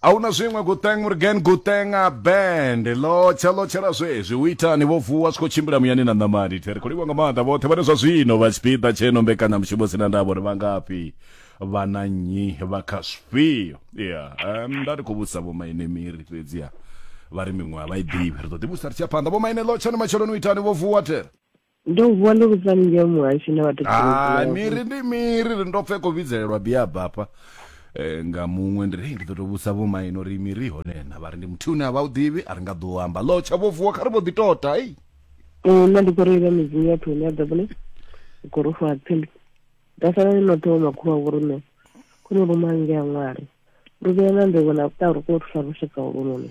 a hu na zwiṅwe guteng murgen guteng a band lotsha lotshela zwezwi u itani vho vuwa zwi khou tshimbila muyani na ṋamani the ri khou livha nga maanḓa vhoṱhe vhane zwa zwino vha tshipiḓa tsheno mbekanyamushumo sina ndavha uri vha ngafhi vha na nnyi vha kha zwifhio ya nda ndi khou vhudzisa vhomaine miri fhedziha vha ri miṅwe a vha i ḓivhi ri ḓo ḓivhudzisa ri tshi ya phanḓa vhomaine lotshani matsheloni u itani vho vuwa there Ndo u vuwa ndo vhudza haningei muhashi na vhathu ha miri ndi miri ri ndo pfhe ko vhidzelelwa biaba hafha eh, nga muṅwe ndi ri ndi ḓo to vhusa vho maino uri miri hone na vha ri ndi muthu une a vha u ḓivhi a ri nga ḓo amba lo tsha vho vuwa kha ri vho ḓi tota ei mm, nṋe ndi khou reila midzimu ya thoni ya ḓabune u khou rufa ha tsimbi nda sala ni noṱhe wo makhulu wa vhorune khone ruma nge a ṅwari ri vhea na nḓevho na vhuṱa ri khou thusa lushaka holunoni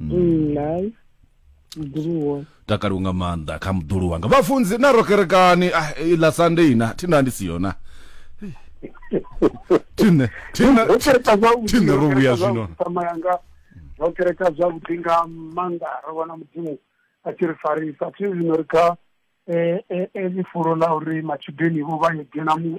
nai mudulu wone takaliwa nga maanḓa kha muḓulu wanga vhafunzi na rokerekani ah, iḽa sunday ina thina ndi si yona thine thine ro kereka zwavhuḓi Thine ro vhuya kereka zwino. zwavhuḓi, sama yanga ro kereka zwavhuḓi nga maanḓa ro vhona mudzimu a tshi ri farisa thi zwino ri kha eh, eh, eh, ḽifulo ḽa uri matshudeni vho vha yo dzhena mu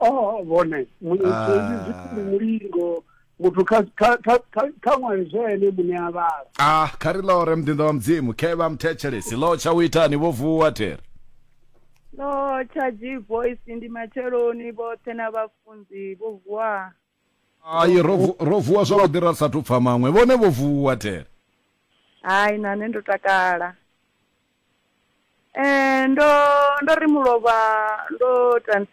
o vhone mulingo muthu kha ṅwali zwo ene muṋe a vhala ah kha ri lore muḓinḓa wa mudzimu khe vha muthetshelesi lo tsha u itani vho vuwa there no tsha g voice ndi matsheloni vhoṱhe na vhafunzi vho vuwa hai ro vu- ro vuwa zwavhuḓi ra sathu pfa maṅwe vhone vho vuwa thele hai na nṋe ndo takala eh ndo ndo ri mulovha ndo tan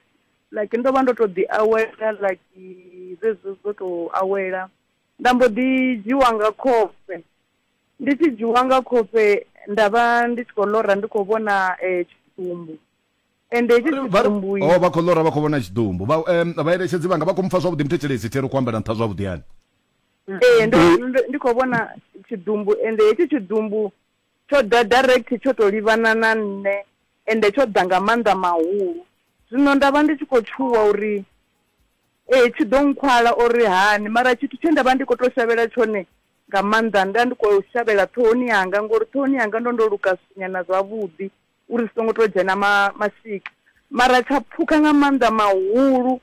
like ndo vha ndo to ḓi awela like zwezwo zwo to awela nda mbo ḓi dzhiwa nga khofhe ndi tshi dzhiwa nga khofhe nda vha ndi tshi khou ḽora ndi khou vhona eh tshitumbu ende hetshi tshitumbuyi oh, vha khou ḽora vha khou vhona tshitumbu vhaeletshedzi vhanga vha khou mpfa zwavhuḓi muthetshelesi thero khou ambela nṱha zwavhuḓi hani ee ndi khou vhona tshiḓumbu ende hetshi tshiḓumbu tsho ḓa direct tsho tou livhana na nṋe ende tsho ḓa nga maanḓa mahulu zwino nda vha ndi tshi khou tshuwa uri ee tshi ḓo nkhwala uri hani mara tshithu tshe nda vha ndi khou tou shavhela tshone nga maanḓa nda ndi khou shavhela ṱhohoni yanga ngori ṱhohoni yanga ndo ndo luka nyana zwavhuḓi uri zwi songo to dzhena ma mashika mara tsha pfuka nga maanḓa mahulu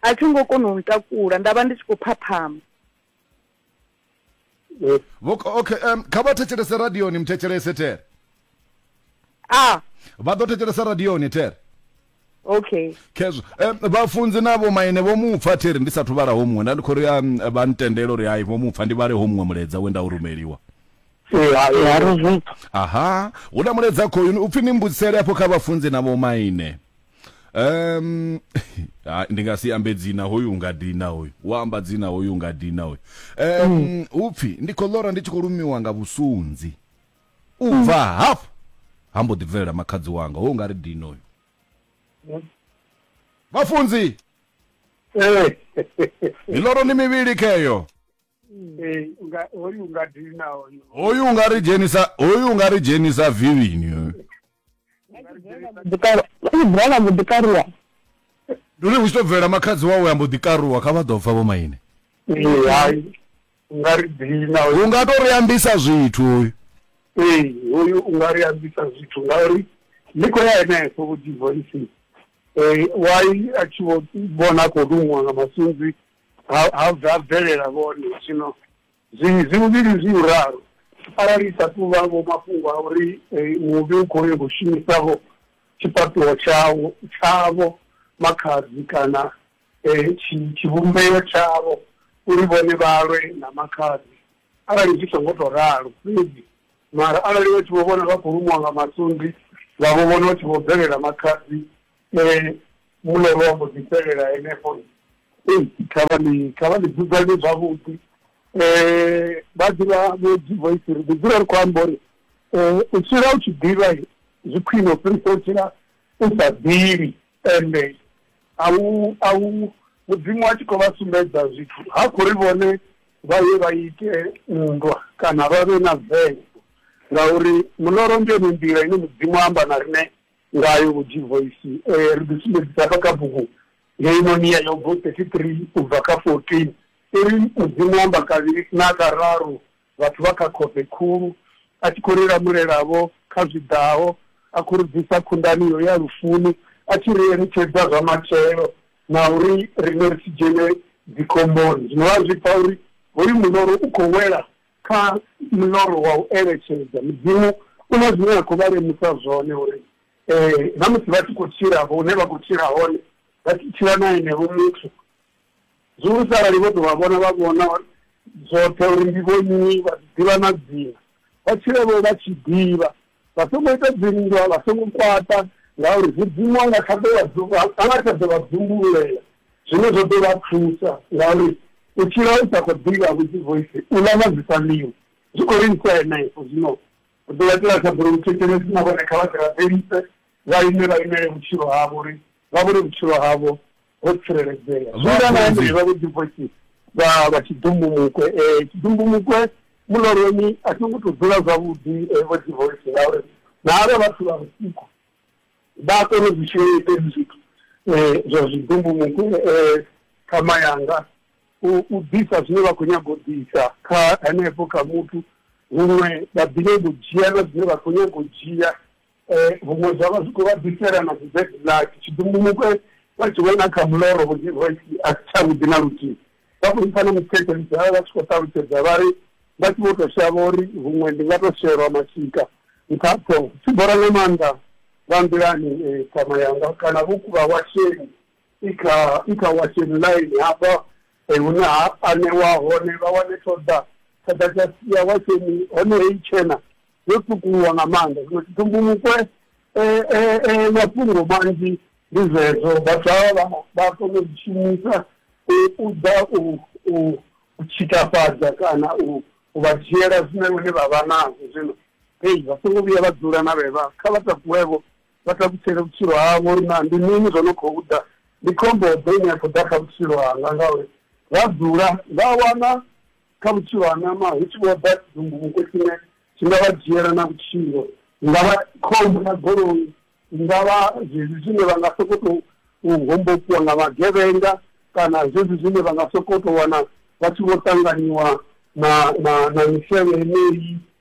a tsho ngo kona u ntakula nda vha ndi tshi khou phaphama okay um, kha vha thetshelese radioni muthetshelese tere a vha ḓo thetshelesa radioni tere okay khezwo um, vhafunzi na vhomaine vho mu pfa thiri ndi sathu vhala ho muṅwe nda ndi khou ri um, vha ntendela uri hai vho mu pfa ndi vhale ho muṅwe muledza we nda u rumeliwa ya ro zwi pfa aha hu na muledza khoyuni upfi ni mbudzisele afho kha vhafunzi na vhomaine um ha, ndi nga si ambe dzina hoyu u nga dina hoyu wa amba dzina hoyu u nga dina hoyu um upfi ndi khou lora ndi tshi khou lumiwa nga vhusunzi u bva hafhu ha mbo ḓi bvelela makhadzi wanga ho nga ri dino uyu vhafunzi Eh, miloro ni mivhili kheyo eh, nga- hoyu nga dina hoyu hoyu u nga ri dzhenisa hoyu u nga ri dzhenisa vivini hoyu bvela mbo ḓi karuwa ndi uri hu tshi to bvela makhadzi wawe a mbo ḓi karuwa kha vha ḓo pfa vho maine hai nga ri dina u nga to ri ambisa zwithu uyu ee uyu u nga ri ambisa zwithu ngauri ndi khou ya henefho vho divoisi um wai a tshi vho vhona a khou luṅwa nga masunzi ha bvelela vhone zwino Zwi zwi huvhili zwi u ralo. Arali i sa tou vha vho mafhungo a uri muvhi u khou nyaga u shumisa vho tshifhaṱuwo tshawo tshavho, makhadzi kana tshi tshivhumbeo tshavho uri vhone vha lwe na makhadzi, arali zwi songo tou ralo fhedzi mara arali vha tshi vho vhona vha khou lumiwa nga masunzi vha vho vhona vha tshi vho bvelela makhadzi Ee, muloro wa mbo ḓi fhelela henefho. Ee, kha vha ḽi kha vha ḽi dzudzanye zwavhuḓi. Ee, vha ḓivha vho divoisi ri ḓi dzula ri khou amba uri u tshila u tshi ḓivha zwi khwine u fhirisa u tshila u sa ḓivhi. Ende a u a u Mudzimu a tshi khou vha sumbedza zwithu ha khou ri vhone vha ye vha ite nndwa kana vha vhe na vengo ngauri muloro ndi yone nḓila ine Mudzimu a amba na riṋe Ngayo Vho G-Voice ee ri ḓi sumbedzisa hafha kha bugu ngei Monia Yobo 33 u bva kha 14, i ri, Mudzimu o amba kavhili na kararu vhathu vha kha khofhe khulu, a tshi khou ri lamulela-vho kha zwi ḓaho, a khou ri bvisa khundani iyo ya lufuni, a tshi ri eletshedza zwa matshelo, na uri riṋe ri si dzhene dzikhomboni. Zwino vha a zwi pfa uri hoyu muṋoro u khou wela Kha muḽoro wa u eletshedza, Mudzimu u na zwine a khou vha lemusa zwone uri na musi vha tshi khou tshila afho hune vha khou tshila hone, vha tshi tshila na enevho muthu, zwihulusa arali vho tou vha vhona, vha vhona zwoṱhe uri ndi vhonnyi, vha ḓi ḓivha na dzina, vha tshile-vho vha tshi ḓivha Vha songo ita dzinndwa, vha songo kwaṱa, ngauri Mudzimu a nga kha ḓo vha dzu-, a nga kha ḓo vha dzumbululela, zwine zwa ḓo vha thusa, ngauri u tshila u sa khou ḓivha vhuḓivoisi, u ḽa na zwi sa ḽiwi, zwi khou livhisa henefho. Zwino ri ḓo vha itela thabelo luthetshelesi, na vhone kha vha ḓi rabelise, vha ime vha imele vhutshilo havho, uri vha vhone vhutshilo havho ho tsireledzea zwoita nga ende vha vho divosi vha vha tshidumbumukwe um eh, tshidumbumukwe muloroni a tho ngo to dzula zwavhuḓi eh, vho divosi ngauri na avha vhathu vha vhusiku vha a kona u zwi shumisa hezwi zwithu um eh, zwa zwidumbumukwe um khama yanga u ḓisa zwine vha khou nyaga u ḓisa kha henefho kha muthu huṅwe vha ḓivhe vhudzhiela zwine vha khou nyaga u dzhia Huṅwe zwa vha zwi khou vha ḓifhela na dzi bed luck, tshidumbumukwe vha tshi vhona kha muloro Vhuḓi Royce a si tshavhuḓi na luthihi. Vha khou mpfa na muthetshelisi vha vha vha tshi khou ṱalutshedza vha ri, Vha tshi vho tou shavha uri huṅwe ndi nga tou shelwa mashika nṱha ha ṱhoho. Tshi bora nga maanḓa vha nḓilani ṱhama yanga kana vho kuvha washeni i kha i kha washeni ḽaini hafha Ee, hune ha anewa hone vha wane ṱhoḓa, ṱhoḓa tsha sia Washeni hone heyi tshena yo tswukuluwa nga maanḓa. Zwino tshiṱumbumukwe mafhungo manzhi ndi zwezwo vhathu havha vha vha kona u zwi shumisa u ḓa u u u tshikafhadza kana u u vha dzhiela zwine vhone vha vha nazwo. Zwino hei vha songo vhuya vha dzula na vhevha kha vha takuwevho vha takutshele vhutshilo havho uri na ndi mini zwo no khou ḓa ndi khombo ḓe ine ya khou ḓa kha vhutshilo hanga ngauri vha dzula vha wana kha vhutshilo ha nama hu tshi vho ḓa dzunguvhuko tshine tshi nga vha dzhiela na vhutshilo nga vha khombo ya goloi nga vha zwezwi zwine vha nga soko tou hombokiwa nga magevhenga kana zwezwi zwine vha nga soko tou wana vha tshi vho ṱanganyiwa na na na misevhe yeneyi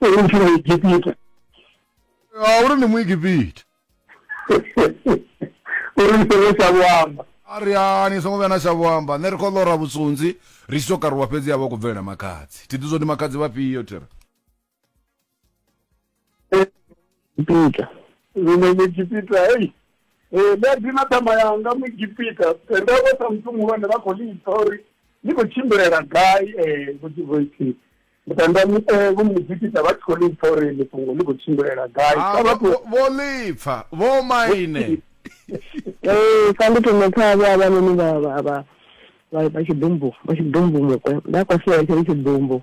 uri ndi muegipita Ah, uri ndi muegipita uri ndi songo tsha vho amba a ri hani songo vhuya na shavho amba nṋe ri khou ḽora vhusunzi ri tshi tou karuwa fhedzi ya vha khou bvelela makhadzi thi ḓi zwo ndi makhadzi vhafhio thira Egipita. Ine muEgipita, hei eh, nda dina ṱhama yanga muEgipita eh, nda vha sa muthu muhulwane vha khou lipfa uri ni khou tshimbilela gai eh, vhudzivoithi mutanda eh, vho muEgipita vha tshi khou lipfa uri ḽi fhungo ḽi khou tshimbilela gai ah, vho lipfa vho maine ee sa ndi thoma pfa vha vhanoni vha vha vha vha tshiḓumbu vha tshiḓumbu mukwe nda kwasiwa tshiri tshiḓumbu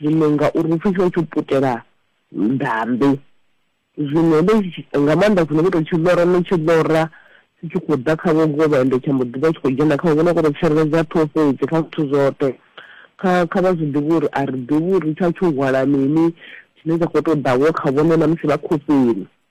zwino ngauri upfhi tsho tsho putela ndambe zwino ndo nga maanḓa zwino vho tou tshi ḽora no tshi ḽora tshi tshi khou ḓa kha vhogovha ende tsha mbo ḓivha tshi khou dzhena kha vhona kho to tsireledza ṱhoho fhedzi kha zwithu zwoṱhe kha kha vha zwi ḓivha uri a ri ḓivhi uri tsha tsho hwala mini tshine tsha khou tou ḓavho kha vhone na musi vha khofheni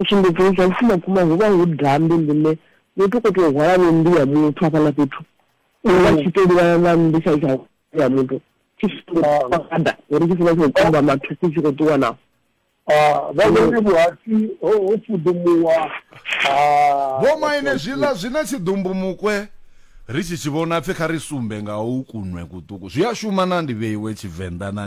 U sumbedza uri zwa vhufumakuma hu vha hu dambi ḽine muthu u khou tea u hwala vho nnḓu ya muthu hafhaḽa fhethu u vha tshi tou livhana na nnḓu tsha tsha ya muthu tshi fada uri tshi funa tshi khou kumba mathuku tshi khou ṱuwa nao vha vhone vhuhasi ho fudumuwa ha Vho maine zwiḽa zwi na tshiḓumbumukwe ri tshi tshi vhona pfi kha ri sumbe nga u kunwe kuṱuku zwi a shuma na ndi vheiwe Tshivenḓa na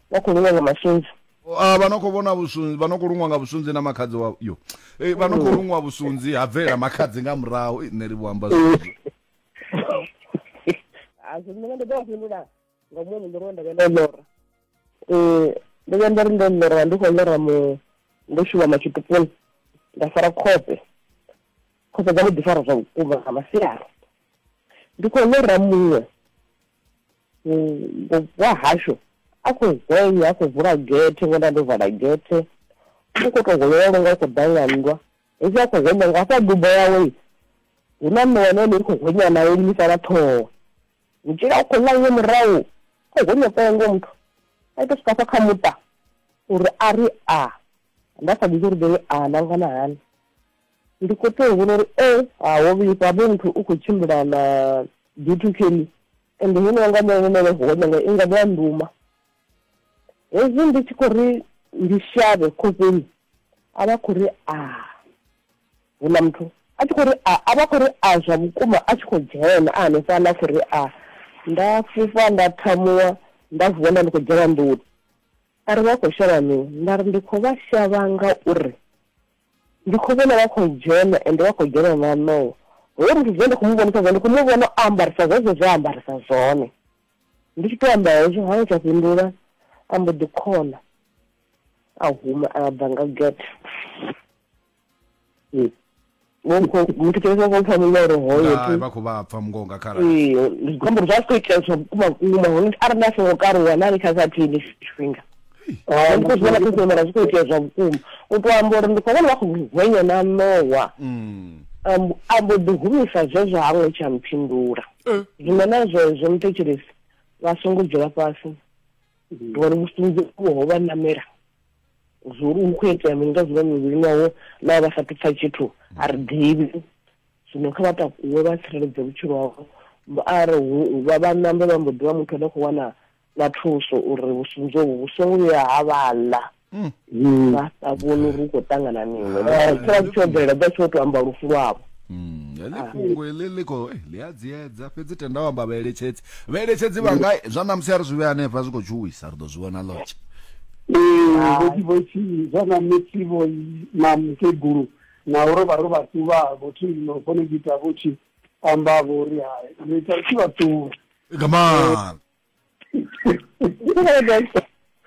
vha khou luṅwa nga masunzi ah, vha no khou vhona vhusunzi vha no khou luṅwa nga vhusunzi na makhadzi wa yo eh, vha no khou luṅwa vhusunzi ha bvelela makhadzi nga murahu nṋe ri vho amba zwezwo a zwi nṋe ndi ḓo vha fhindula nga muṅwe muṋoro we nda vhe ndo lora um ndo vhuya nda ri ndo lora ndi khou lora mu ndo shuma matshitupuni nda fara khope khope dza mu ḓifara zwa vhukuma nga masiari ndi khou lora muṅwe wahashu a khou zenya a khou vula gethe ngona ndo vala gethe u khou tou holela longa u khou ḓa nga nndwa hezwi a khou hwenya nga hafha dubo yawe hu na mme wane ene i khou hwenya nayo limisa na ṱhoho mutshila u khou ḽa nge murahu khou hwenya pengo muthu a ita swika fha kha muṱa uri a ri a nda sa ḓivhi uri ḓei a na ngana hani Ndi khou tou humbula uri e ha ho vhifha hafho muthu u khou tshimbila na duty kelly ende hune wanga nṋe nṋe nṋe ho nyanga i nga vha nduma hezwi ndi tshi khou ri ndi shavhe khofheni a vha khou ri a hu na muthu a tshi khou ri a a vha khou ri a zwa vhukuma a tshi khou dzhena a hanefha na khou ri a nda fhufha nda thamuwa nda vuwa nda ndi khou dzhena nḓuni a ri vha khou shavha mini nda ri ndi khou vha shavha nga uri ndi khou vhona vha khou dzhena ende vha khou dzhena na noo ho ri zwe ndi khou mu vhonisa zwone ndi khou mu vhona o ambarisa zwezwo zwe ambarisa zwone ndi tshi tou amba hezwo hana tsha fhindula a mbo ḓi khona a huma a bva nga get hmm. muthu kene sa khopfa muloro hoyovha khou vha pfa mungo nga kharali ee zwiambaro zwa si khou itea zwa vhukuma vhukuma hone arali a songo karuwa na ni kha sa thini tshifhinga ah, ndi khou zwi vhona zwi khou itea zwa vhukuma u tou amba uri ndi khou vhona vha khou hwenya na ṋowa mm. a mbo ḓi humisa zwezwo ha ngo tsha mphindula eh. zwino na zwezwo muthetshelesi vha songo dzula fhasi ngori vhufunzi vho ho vha namela zwori hu khou itea mini nga zwiva mivhilini yawo na vha sa pfha tshithu a ri ḓivhi zwino kha vha takuwe vha tsireledze vhutshilo havho a ri vha vha nambe vha mbo ḓi vha muthu ane khou wana na thuso uri vhusunzi hovhu vhu songo vhuya ha vhaḽa hmm. vha sa vhoni uri hu khou ṱangana mini tsha tshi tsho bvelela dza tsho tou amba lufu lwavho hmm, heḽi ah. fhungo heḽi ḽi khou eh, ḽi a dziedza fhedzi tenda u amba vhaeletshedzi vhaeletshedzi vha nga zwa namusi a ri zwi vhe hanefha zwi khou tshuwisa ri ḓo zwi vhona lotshe vhotivhothi zwa namusi vho na mukegulu na uri vha ri vhathu vha vhothi no kone u ita vhotshi amba vho ri hai ni tsa tshi vhaṱuwa come on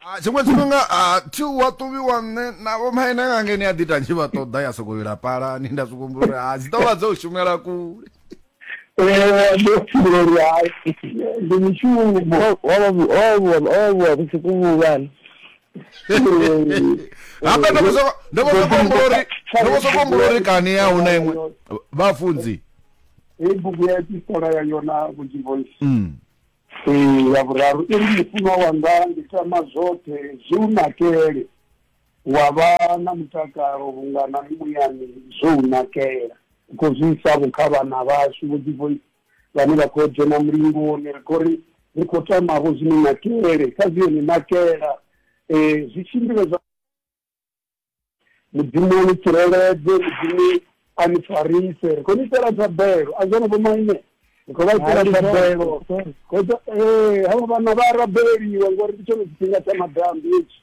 Ah, tshiṅwe tshifhinga ah, thi wa ṱuvhiwa nṋe na vho maine nga ngeni a ḓi ta tshi vha ṱoḓa ya sokou ila palani nda zwi humbula uri ah, dzi ḓo vha dzo u shumela kule Eh, ndo pfhi vho ri hai ndi mishumo ovha vhusiku vhuvhana hafha ndo vho ndo vho soko humbula uri ndo vho soko humbula uri kani ya huna iṅwe vhafunzi hei bugu ya epistola ya yona vhunzhivonsi mm. ya vhuraru i ri mufunwa wanga ndi tama zwoṱhe zwi u nakele wa vha na mutakalo vhunga na muyani zwo u nakela u khou zwi isa vho kha vhana vhashu vhunzhivonsi vhane vha khou dzhena mulingoni ri khou ri ri khou tamavho zwi ni nakele kha zwi yo ni nakela um zwi tshimbile zwa mudzimu a ni tsireledze mudzimu a ni farise ri khou ni itela thabelo a zwone vhomaine ri khou vha itela thabelo ee havha vhana vha rabeliwa ngori ndi tshone tshifhinga tsha madambi hetshi